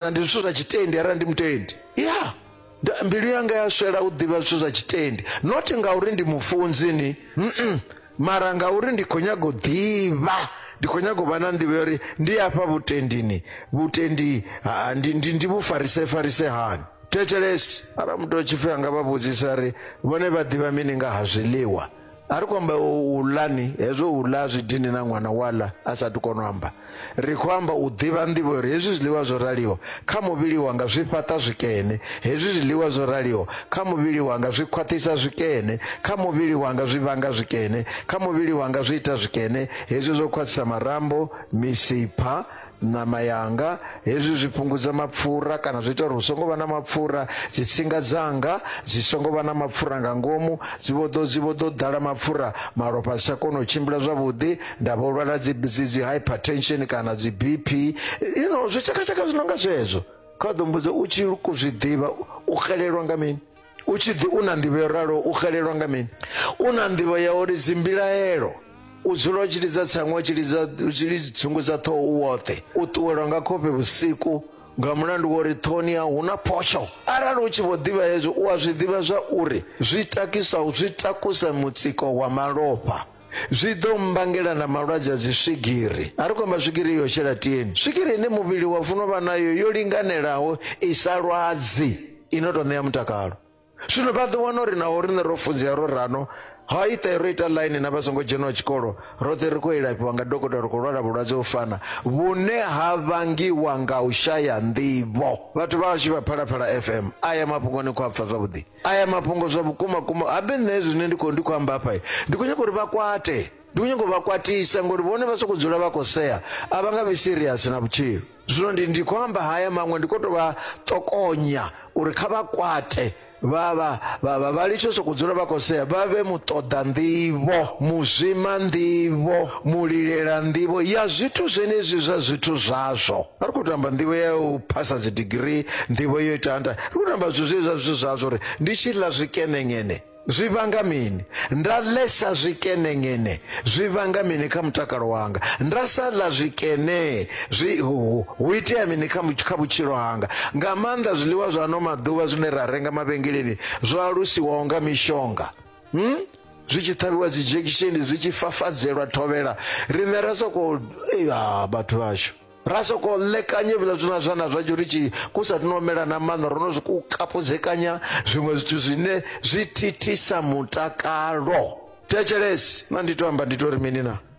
na ndi zwithu zwa tshitendi arali ndi mutendi ya nda- mbilu yanga ya swela u ḓivha zwithu zwa tshitendi not ngauri ndi mufunzi ni mm mara ngauri ndi khou nyaga u ḓivha ndi khou nyaga u vha na nḓivho ya uri ndi afha vhutendini vhutendi ha, ndi, ndi, ndi vhufarise farise hani thetshelesi arali muthu a tshi pfi anga vha vhudzisa ri vhone vha ḓivha mini nga ha zwiḽiwa a ri khou amba u ḽani hezwo u ḽa zwi dini na ṅwana wa ḽa a sathu kona u amba ri khou amba u ḓivha nḓivho uri hezwi zwiḽiwa zwo raliho kha muvhili wanga zwi fhaṱa zwikene hezwi zwiḽiwa zwo raliho kha muvhili wanga zwi khwaṱhisa zwikene kha muvhili wanga zwi vhanga zwikene kha muvhili wanga zwi ita zwikene hezwi zwo khwaṱhisa marambo misipha Ṋama yanga, hezwi zwi fhungudza mapfura kana zwi ita uri hu songo vha na mapfura. Dzitsinga dzanga dzi songo vha na mapfura nga ngomu, dzi vho ḓo dzi vho ḓo ḓala mapfura, malofha a si tsha kona u tshimbila zwavhuḓi, nda vho lwala dzi dzi dzi hypertension kana dzi BP, you know zwitshakatshaka zwi no nga zwezwo. Kha vha ḓo mmbudza, u tshi zwi ḓivha u xelelwa nga mini? U tshi ḓi u na nḓivho yo raloho u xelelwa nga mini? U na nḓivho ya uri dzimbilaelo u dzula u tshi lidza tsango u tshi lidza u tshi lidza dzungudza ṱhoho u woṱhe u ṱuwelwa nga khofhe vhusiku nga mulandu wa uri ṱhohoni yau hu na photsho arali u tshi vho ḓivha hezwo u a zwi ḓivha zwa uri zwi takisa zwi takusa mutsiko wa malofha zwi ḓo mmbangela na malwadze a dzi swigiri a ri khou amba swigiri yo shela tieni swigiri ine muvhili wa funo vha nayo yo linganelaho i sa lwadzi i no tou ṋea mutakalo zwino vha ḓo wana uri naho riṋe ro funzea ro rano ha iṱe ro ita ḽaini na vha songo dzheniwa tshikolo roṱhe ri khou ilafhiwa nga dokotela ri khou lwala vhulwadze u fana vhune ha vangiwa nga u shaya nḓivho vhathu vhashu vha phalaphala fm a ya mafhungoni khou a pfha zwavhuḓi Aya mafhungo zwa vhukuma kuma habe nṋe zwine ndi khou ndi khou amba hafha ndi khou nyaga uri vha kwate ndi khou nyaga u vha kwatisa ngori vhone vha sokou dzula vha khou sea a vha nga vhi serious na vhutshilo zwino ndi ndi khou amba haya maṅwe ndi khou tou vha ṱokonya uri kha vha kwate vha vha vha vha vha litsho sokou dzula vha khou sea vha vhe muṱoḓa nḓivho muzwima nḓivho mulilela nḓivho ya zwithu zwenezwi zwa zwithu zwazwo a ri khou tamba nḓivho ya u phasa dzi digirii nḓivho yo ita nda ri khou tamba zwithu zwezwa zwithu zwazwo uri ndi tshi ḽa zwikenengene zwi vhanga mini nda ḽesa zwikenengene zwi vhanga mini kha mutakalo wanga nda sa ḽa zwikene zwi hu hu itea mini kha mu- kha vhutshilo hanga nga maanḓa zwiḽiwa zwa ano maḓuvha zwine ra renga mavhengeleni zwo alusiwaho nga mishonga hmm? zwi tshi ṱhavhiwa dzi dzhekisheni zwi tshi fafadzelwa thovhela riṋe ra sokou vhathu vhashu ra sokou ḽekanye vhila zwina zwana zwa tshi ri tshi ku sa tino mela na maṋa ro no zwi ku kapudzekanya zwiṅwe zwithu zwine zwi thithisa mutakalo thetshelesi na ndi to amba ndi to ri mini na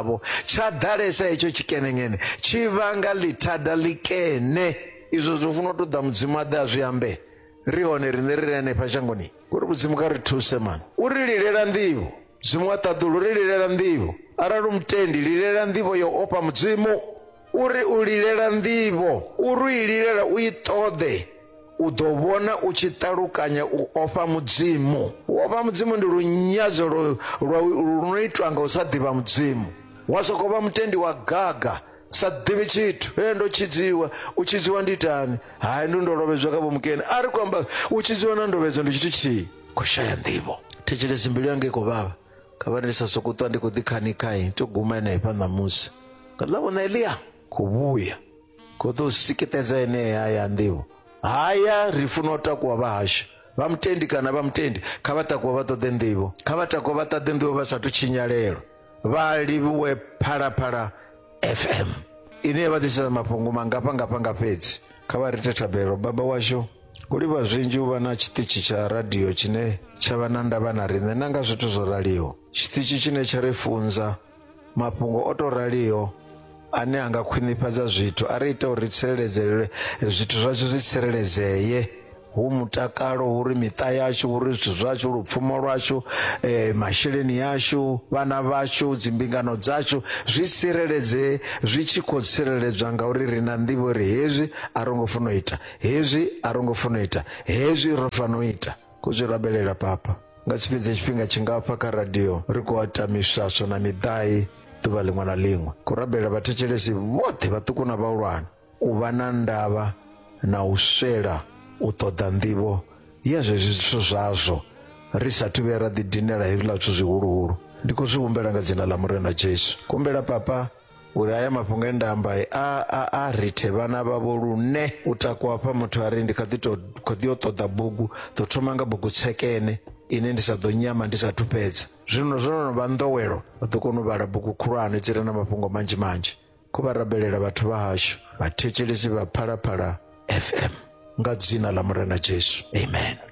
tshavho tsha ḓalesa hetsho tshikenengene tshi vhanga ḽithada ḽikene izwo zwo funa u tou ḓa mudzimu a ḓe a zwi ambe ri hone riṋe ri re hanefha shangoni uri mudzimu kha ri thuse mani u ri lilela nḓivho mudzimu wa ṱaḓulu ri lilela nḓivho arali u mutendi lilela nḓivho yo ofha mudzimu U ri u lilela nḓivho, u ri u i lilela u i ṱoḓe, u ḓo vhona u tshi ṱalukanya u ofha Mudzimu. U ofha Mudzimu ndi lunyadzo lu no itwa nga u sa ḓivha Mudzimu. Wa sokou vha mutendi wa gaga, sa ḓivhi tshithu. Hee, ndo tshidziwa. U tshidziwa ndi itani? Hai, ndi ndo lovhedzwa kha vhomukene. A ri khou amba u tshidziwa na ndovhedzo ndi tshithu tshithihi, khou shaya nḓivho. Thetshelesi mbilu yanga i khou vhavha. kha vha ndi sa sokou ṱwa ndi khou ḓi khanikhayi to guma henefha ṋamusi nga ḽa vhona elia khou vhuya khou ḓo sikitedza enee haya nḓivho haya ri funa u takuwa vha hashu vha mutendi kana vha mutendi kha vha takuwa vha ṱoḓe nḓivho kha vha takuwa vha ṱaḓe nḓivho vha sathu tshinyalelwa vha livhuwe phalaphala fm ine ya vha ḓisela mafhungo mangafha ngafha nga fhedzi kha vha rite thabelo baba washu u livha zwinzhi u vha na tshiṱitshi tsha radio tshine tsha vha na ndavha na riṋe na nga zwithu zwo raliho tshiṱitshi tshine tsha ri funza mafhungo o tou raliho ane a nga khwinifhadza zwithu a ri ita uri ri tsireledzele zwithu zwashu zwi tsireledzeye hu mutakalo uri miṱa yashu uri zwithu zwashu lupfumo lwashu eh, masheleni yashu vhana vhashu dzimbingano dzashu zwi tsireledzee zwi tshi khou tsireledzwa ngauri ri na nḓivho uri hezwi a ro ngo funa u ita hezwi a ro ngo funa u ita hezwi ro fana u ita ku zwi rabelela papa nga si fhedze tshifhinga tshingafha kha radio ri khou ata miswaswo na miḓai ḓuvha ḽiṅwe na ḽiṅwe ku rabelela vhathetshelesi vhoṱhe vhaṱuku na vhahulwane u vha na ndavha na u swela u ṱoḓa nḓivho ya zwezwi zwithu zwazwo ri sathu vhuya ra ḓidinela hezwiḽa zwithu zwihuluhulu ndi khou zwi humbela nga dzina ḽa murena jesu kumbela papa uri haya mafhungo e nda amba a a a rithe vhana vhavho lune u takuwa hafha muthu a ri ndi kha ḓi to kho ḓi yo ṱoḓa bugu ḓo thoma nga bugu tshekene ine ndi sa ḓo nyama ndi sa thupedza zwino zwo no vha nḓowelo vha ḓo kona u vhala bugu khulwane dzi re na mafhungo manzhi manzhi kho vha rabelela vhathu vha hashu vhathetshelesi vha phalaphala fm nga dzina ḽa murena jesu amen